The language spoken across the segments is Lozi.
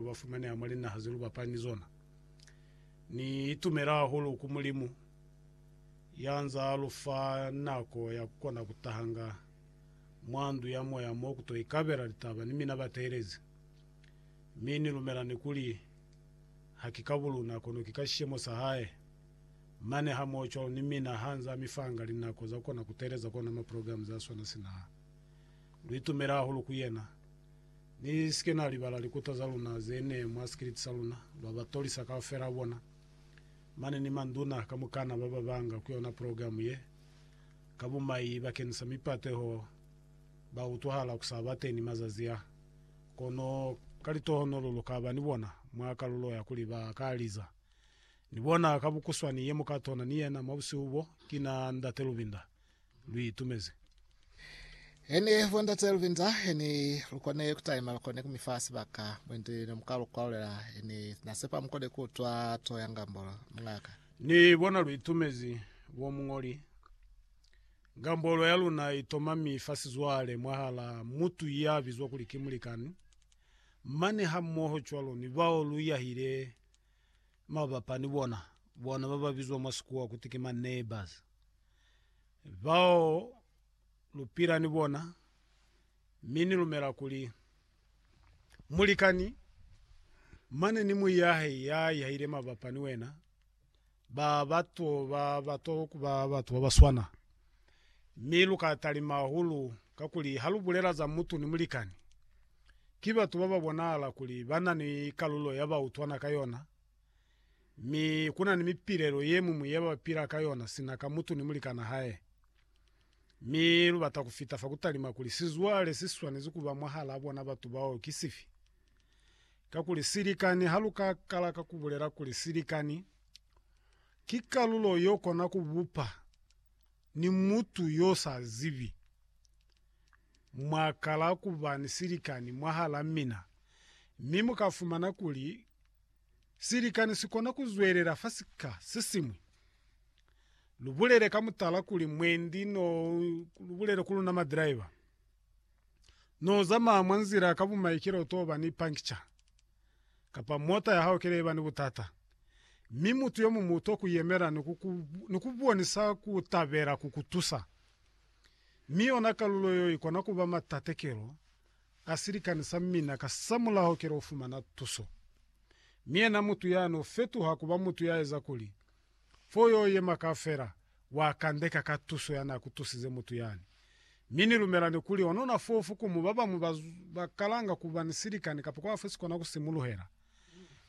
Lu ba fumaneha mwa linaha ze lu bapaa ni zona. Ni itumela hahulu ku Mulimu, ya nza lu fa nako ya ku kona ku tahanga mwa ndu ya moya mo ku to ikabela litaba ni mina bateelezi. Mi ni lumela ni kuli, ha ki ka buluna, kono ki ka sishemo sa hae. Mane hamohocwalo ni mina ha nza mi fanga linako za ku kona ku teeleza kona maprograme za swana sina. Lu itumela hahulu ku yena. Ni si ke na libala likuta za luna ze ne mwa sikiliti sa luna, ba ba tolisa kaufela bona, mane ni manduna kamukana ba ba banga ku yona progilamu ye. Ka bumai bakeñisa mipateho ba utwahala ku sa ba teñi mazazi a, kono ka litohonolo lu ka ba ni bona mwa kalulo ya kuli ba ka liza. Ni bona ka bukuswani ye mu ka tona ni yena mwa busihu bo, ki na Ndate Lubinda. lu itumezi. He ni hwa Ndate Lubinza, he ni lu kone ku taima, lu kone ku mi fa sibaka mwendi ne mu ka lu kwalulela. He ni na sepa mu kone ku utwa to ya Ngambolo, muñaka. Ni bona lu itumezi bo muñoli. Ngambolo ya luna i toma mi fa sizwale mwahala mutu ya bizwa kuli ki mulikani, mane hamoho cwalo ni bao lu yahile Mabapa ni bona, bona ba ba bizwa mwa Sikuwa kuti ki ma neighbors, bao lu pila ni bona, mi ni lumela kuli, Mulikani, mane ni muyi ya hae ya ihahile mabapa ni wena, ba ba to, ba ba to kuba batu ba ba swana. Mi lu ka talima hahulu, kakuli ha lu bulela za mutu ni mulikani, ki batu ba ba bonahala kuli ba na ni kalulo ya ba utwana ka yona, mi ku na ni mipilelo ye muñwi ye ba pila ka yona sina ka mutu ni mulikana hae. Mi lu bata ku fita fa ku talima kuli sizwale si swanezi ku ba mwahalaa bona batu bao ki sifi. Kakuli silikani ha lu ka kala ka ku bulela kuli silikani, ki kalulo yo kona ku bupa ni mutu yo sa zibi. Mwa kala ku ba ni silikani mwahal'a mina, mi mu ka fumana kuli silikani si kona ku zwelela fa sika se siñwi. Lu bulele ka mutala kuli mwendi n'o lu bulele ku luna madiraiva. No zamaya mwa nzila ka bumaikelo to ba ni pankitša, kapa mota ya hao ke ne ba ni butata, mi mutu yo muñwi u to ku yemela ni ku, ku, ni ku bonisa ku tabela ku ku tusa. Mi yona kalulo yo i kona ku ba matatekelo a silikani sa mina, kasamulaho ke lo fumana tuso. Mi yena mutu ya no fetuha ku ba mutu ya eza kuli fo yo yema kaufela, wa kandeka ka tuso ya na ku tusize mutu yani. Mi ni lumela ni kuli onona fofu ku mu ba bañwi ba ba kalanga ku ba ni silikani kapa kwa fo si kona ku simuluhela,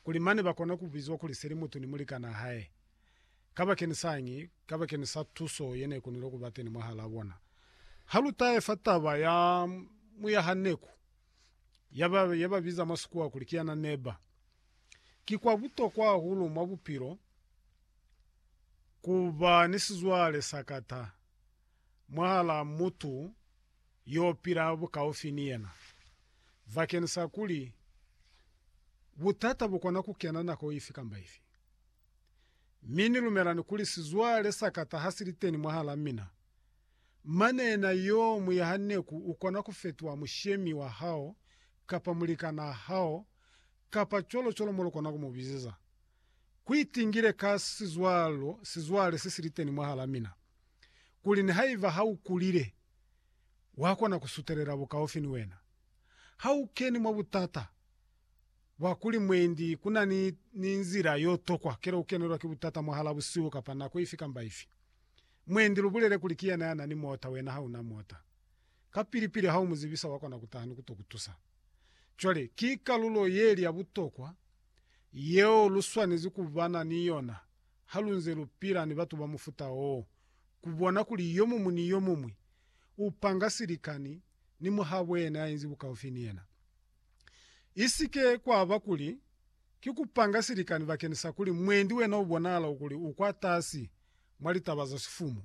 kuli mane ba kona ku bizwa kuli se li mutu ni mulikanaa hae. Kabakenisaañi? Kabakeni sa tuso ye ne konile ku ba teni mwahalaa bona. Ha lu taefa taba ya muyahaneku, ya ba, ya ba biza mwa Sikuwa kuli ki yana neba. Ki kwa butokwa hahulu mwa bupilo ku ba ni sizwale sa kata mwahal'a mutu yo pila bukaufi ni yena, bakeni sa kuli butata bu kona ku kena nako ifi kamba ifi. Mi ni lumelani kuli sizwale sa kata ha si li teni mwahal'a mina. Manena yo muyaha neku ukona kufetuha mushemi wa hao kapa mulikana hao kapa cwalo cwalo mo lukona ku mubizeza. Kuitingile ka sizwalo sizwale se siliteni mwahala mina, kuli nihaiba ha ukulile, wakona kusutelela bukaufi ni wena. Ha ukeni mwa butata bwa kuli mwendi kuna ni nzila yotokwa kele ukenelwa ki butata mwahala busihu kapa nako ifi kamba ifi, Mwendi lubulele kuli kiyena yanani mota wena hauna mota. Kapili pili haumuzibisa wakona kutaha ni kuto kutusa. Cwale ki kalulo yeli ya butokwa yeo luswanezi kubana ni yona halunze lupila ni batu ba mufuta oo, kubona kuli yomuñwi ni yomuñwi upanga silikani ni muhabo yena yainzi bukaufi ni yena. Isike kwaba kuli ki kupanga silikani bakeni sa kuli mwendi wena ubonahala kuli ukwatasi mwa litaba za sifumu,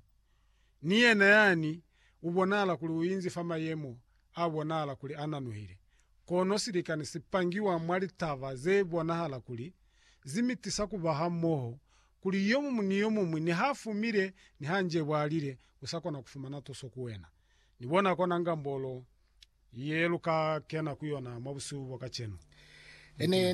ni yena yani ubonahala kuli uinzi fa mayemo abonahala kuli ananuhile. Kono silikani sipangiwa mwa litaba zebonahala kuli zimitisa kuba hamoho, kuli yomumu ni yomuñwi niha fumile niha njebwalile usakona kufumana tuso ku wena. Nibona kona ngambolo ye lu ka kena ku yona mwa busihu bwa kacenu. Ene